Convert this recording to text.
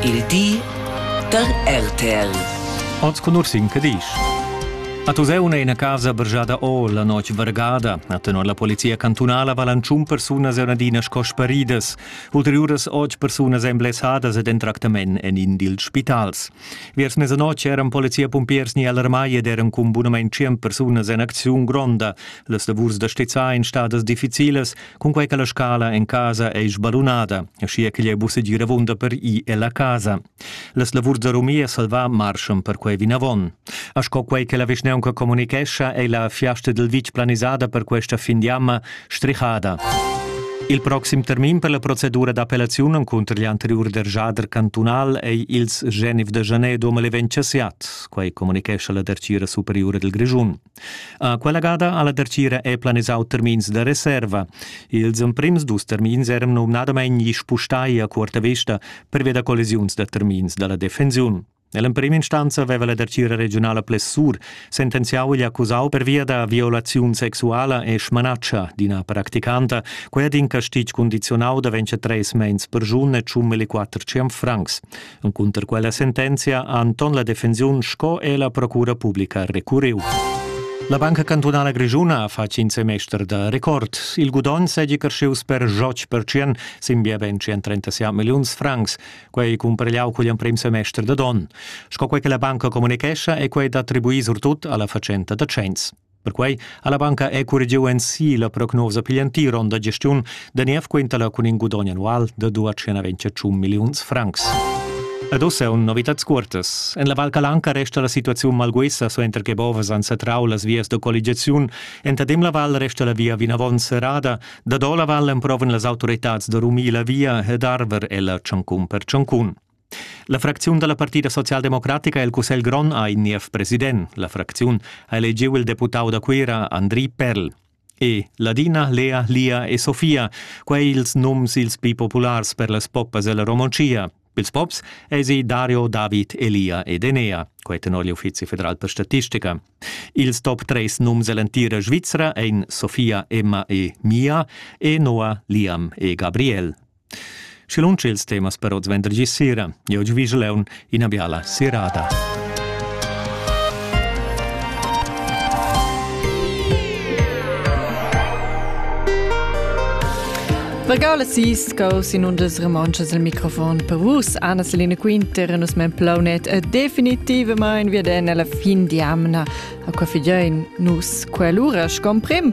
Il di da RTL. Oz conoscin che disch. A Tuseuna ina casa bergiada o la notg vargada, a tenor la polizia cantunala valan tschun persunas e adina sco sparidas. Ulteriuras otg persunas èn blessadas ed en tractament en in dils spitals. Viers mesanotg eran polizia-pumpiers ni alarmai ed eran cun bunament tschient persunas en acziun gronda. Las lavurs da stizzar en stadas difficilas Cunquei che la scala en casa ei sbalunada, aschia ch'igl ei buca segir avunda per i ella casa. Las lavurs da rumia salva marschan per quei vinavon. A sco quei che la vischneunca comunicescha, ei la fiasta dil vitg planisada per questa fin di amma strihada. Il proxim termin per la procedura d'appellaziun encunter gli anteriur dergiader cantunal ei ils Genif de Janedo mal ventg siat, quei comunicescha la Dertgira superiura dil Grischun. Quella gada ha la dertgira è planisau termins da reserva. Ils emprims dus termins eran numnadamein gli spustai a cuorta vesta pervia da collisiuns da termins dalla defensiun. Nell'emprima instanza aveva la dertgira regionala Plessur sentenziau gli accusau pervia da violaziun sexuala e smanatschia d'ina practicanta, quella d'in castig condizionau da ventscher treis meins per giun e tschum e quatter ciam francs. Encunter quella sentenzia ha Anton la defensiun sco e la procura publica recurriu. La Banca Cantunala Grischuna ha fatg in semester da record. Il gudogn seigi crescius per joc percien sin bia ben 137 milliuns francs, quei cumpargliau cugl emprem semester da don. Sco quei che la banca communichescha è quei d'attribuir surtut alla fatschenta da cenns. Perquei ha la banca ecurgiu ensi la prognosa pigl entir onn da gestiun da niev quintala cun in gudogn annual da 228 milliuns francs. Ed ussa un novitads cuortas. En la Val Calanca resta la situaziun malguessa suenter che bovas han satrau las vias da colligiaziun. Entadem la val resta la via vinavon serrada. Da do la val emprovan las autoritads da rumir la via ed arver ella tschancun per tschancun. La fracziun da la Partida socialdemocratica el Cussegl grond ha in niev president. La fracziun ha elegiu il deputau da Cuira Andri Perl e Ladina, Lea, Lia e Sofia, quei ils nums ils pli populars per las poppas ella Romontschia. Pils pops esi Dario, David, Elia ed Enea, quei tenor l'Uffizi federal per statistica. Ils top 3 nums ell'entira Svizra ein Sofia, Emma e Mia e Noah, Liam e Gabriel. Schi lunsch ils temas per oz vendergi sera. Io gi vigel eun ina biala serada. Pagala sis caus in undas remonschas al microfon per vus, Anna Selina Quinter, nus men plaunet e definitivamain via den alla fin di amna a qua fidein nus quell'ura scom prim.